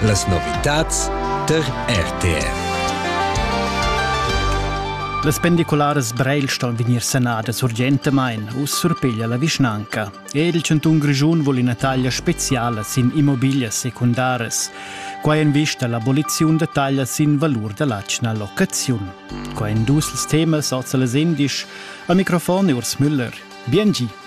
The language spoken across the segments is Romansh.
Las novitads tar RTR. Las pendicularas Breil ston vegnir sanadas urgentamain, uss surpiglia la vischnanca. E il chantun Grischun vul ina taglia speziala sin immobiglias secundaras. Quai en vista l'aboliziun da taglia sin valur da l'atgna locaziun. Qua en dus temas oz las indisch. Al microfon è Urs Müller. Biengi.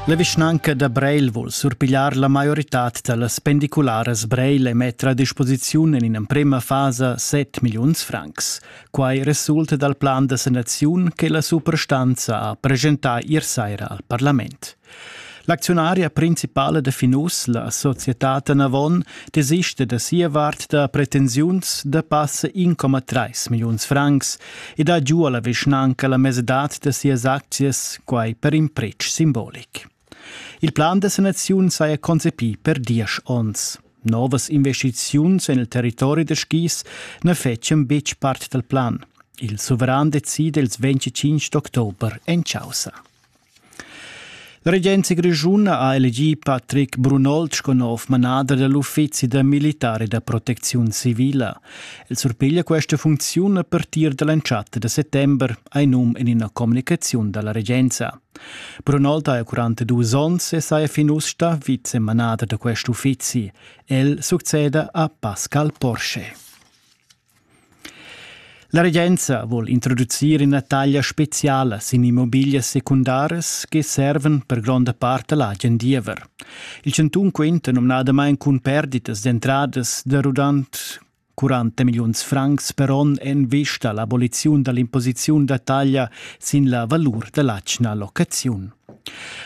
La vischnanca da Breil vul surpigliar la maioritad da las pendicularas Breil e metter a disposiziun en in'emprema fasa 7 milliuns francs. Quai resulta dal plan da sanaziun che la suprastanza ha presentà ier saira al parlament. L'acziunaria principala da Finus, la societad Anavon, desista da sia vart da pretensiuns da passa 1,3 milliuns francs ed ha giu alla vischnanca la mesedad da sias aczias, quai per in pretsch simbolic. Il plan da sanaziun saja concepì per diesch onns. Novas investiziuns en il territori da skis na fetschian betg part dal plan. Il suveran decide ils 25 d'october en causa. La regenza grischuna ha elegì Patrick Brunold sco nov manader da l'uffizi da militar e da protecziun civila. El surpiglia questa funcziun a partir da l'entschatta da settember, ha num en ina communicaziun da la regenza. Brunold ha 42 onns e saja fin uss stà vicemanader da quest uffizi. El succeda a Pascal Porsche. La regenza vul introducir ina taglia speciala sin immobiglias secundaras che servan per gronda part l'agen diever. Il chantun quenta numnadamain cun perditas d'entradas da rudant 40 milliuns francs per onn en vista l'aboliziun dall'imposiziun da taglia sin la valur dall'atgna locaziun.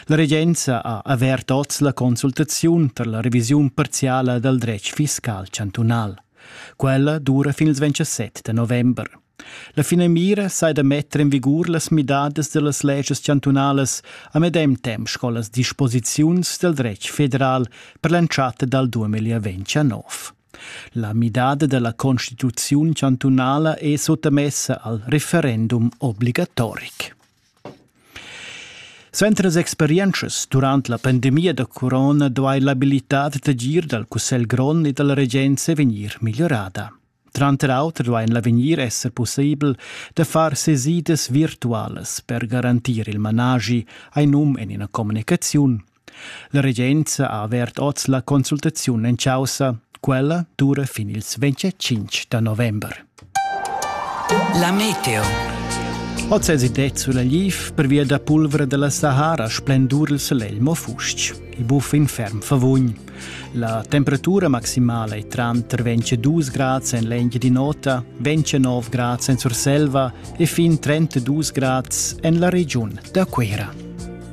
La regenza ha avert oz la consultaziun per la revisiun parziala dal dretg fiscal chantunal. Quella dura fin ils 27 da november. La finamira sai da metter en vigur las midadas dellas legias chantunalas a medem temp sco las disposiziuns del dretg federal per l'entschatta dal 2029. La midada della Constituziun chantunala è sottamessa al referendum obligatoric. Suenter las experientschas durant la pandemia da corona duai l'abilitad d'agir dal Cussegl grond e da la regenza vegnir migliorada. Tranter auter duai en l'avegnir esser pussibel da far sesidas virtualas per garantir il managi, hai num en ina communicaziun, La regenza ha avert oz la consultaziun en caussa. Quella dura fin ils 25 da november. La meteo. Oz es id sulla liv pervia da pulvra della Sahara splendur il Selelmo fustg. Il buf in ferm favugn. La temperatura maximala è tranter 22 grad en l'enge di nota, 29 grad en Surselva e fin 32 grad en la regiun da Quera.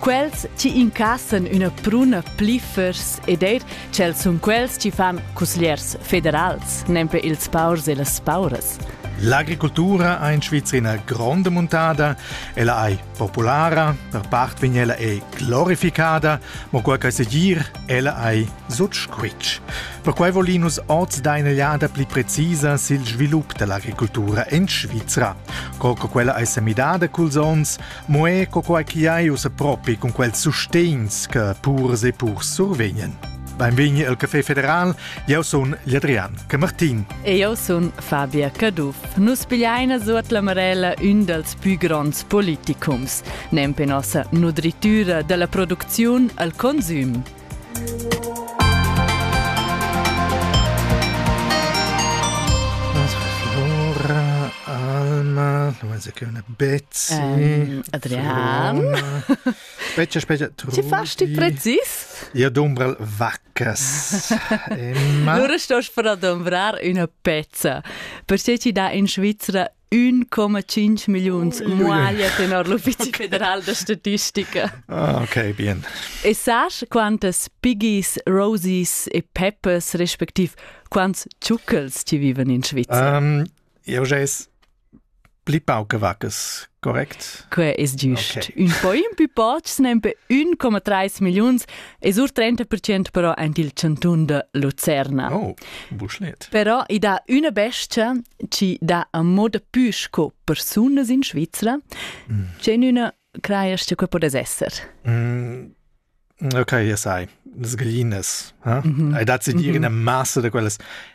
Quels ti incassen üna pruna pliffers ed eir tschels sun quels chi fan cusgliers federals, nempe ils paurs e las pauras. L'agricultura ha in Svizina gronda muntada, ella è populara, per part vegn ella è glorificada, ma quel che segir, ella è sut squitsch. Perquai volinus oz da inelliada pli precisa sil svilup dell'agricultura in Svizra. Col che quella è semidada culs ons, Mo è co quai chi hai ussa propi cun quels sustegns che purs e purs survegnen. Benvegni al Café Federal, eu sun Adrian Camartin. E eu sun Fabia Caduff. Nus pigliaina suot la marella ün dals pü gronds politicums, nempe nossa nudritüra da la producziun al consüm. Betsy. Um, Adrian. Specia, specia. Ti fast dich präzis? Io dumbrel vaccas. Emma. Du stehst für dumbrar una pezza. Perché ci da in Svizzera Ün coma tschinch milliuns maglia tenor l'Uffizi federal da statistica. Ah, okay, bien. E sas quantas piggies, rosies e peppers respektiv quants tschucchels ti vivan in Svizzera? Um, eu ges pli pauche vaccas, correct? Que es giust. Okay. Un po in più poch, nempe 1,3 milliuns E sur 30% però en il cantun de Lucerna. Oh, buschlet. Però i dà üna bestia chi dà a moda pü sco persunas in Svizzera, mm. c'è üna creias che può esser. Mm. Ok, ja sai, das Gallines. Eh? Mm -hmm. Hai dat sie dir mhm. in der Masse de quellas